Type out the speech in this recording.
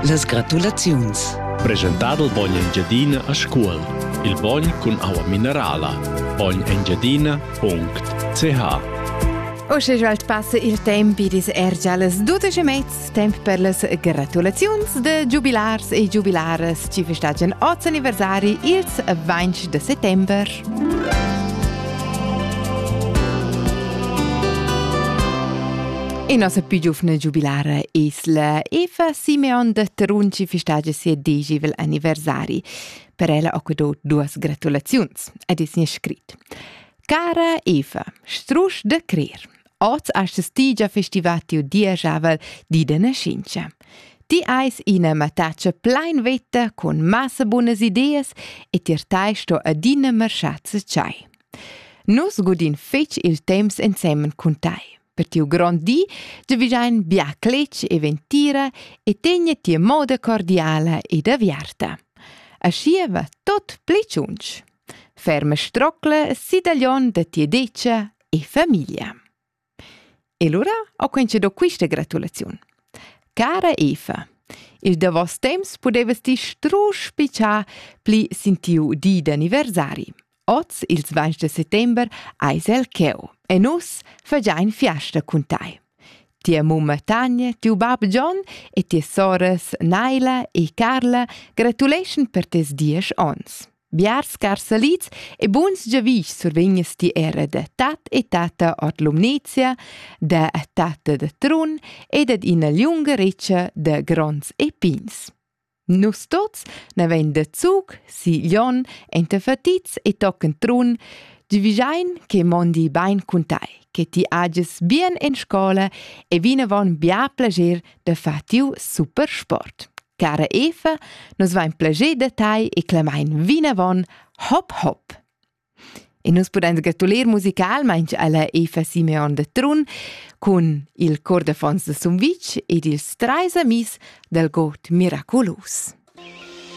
Las gratulaziuns. Presentadel bogn Engiadina a Scuol. Il bogn cun aua minerala. bognengiadina.ch Uschè svelt passa il temp ed es er già las dudesch e mez temp per las gratulaziuns da giubilars e giubilaras chi festagian oz anniversari ils 20 de settember. E nos più giovane giubilare Isla Eva Simeon de Terunci festagia sia digivel anniversari. Per ella ho dato duas gratulaziuns ed es nia scrit. Cara Eva, strusch de crer. Oz astess ti già festivar tiu dieschavel di de nascincha. Ti eis ina mattatscha plein vetta con massa bunas ideas e tier tei sto adina marschar tschai. Nus godin fetg il temps ensemen cun tei. Per tiu grond di giavischein bia cletg e ventira e tegna ti moda cordiala ed aviarta. Aschi va tot pli tschunch. Ferma strocla sidaglion da tia decia e famiglia. E lura ho quince do quista gratulaziun. Cara Eva, il davos temps pudevas ti strusch pichar pli sin tiu di d'anniversari. Oz, ils 20 de settember, eis el cheu e nus fagein fiasta cun tai. Tia mumma Tanja, tiu bab John e ties soras Naila e Carla gratuleschan per tes diesch ons. Biars scarsalits e buns giavischs survegnas ti era da tat e tata ord Lumnezia, da tate da Trun e dad ina liunga retscha da gronds e pins. Nus tuts navein da Zug si Glion enta Fatits e tochen Trun, givigein che mondi bein cun tai, che ti ages bien en scola e vinavon bia plager da far tiu super sport. Cara Eva, nos vain plager da tai e clamain vinavon hop hop. E nus pudains gratuler musicalmaing alla Eva Simeon de Trun cun il cor de fons de Sumvitg ed ils trais amis del god miraculus.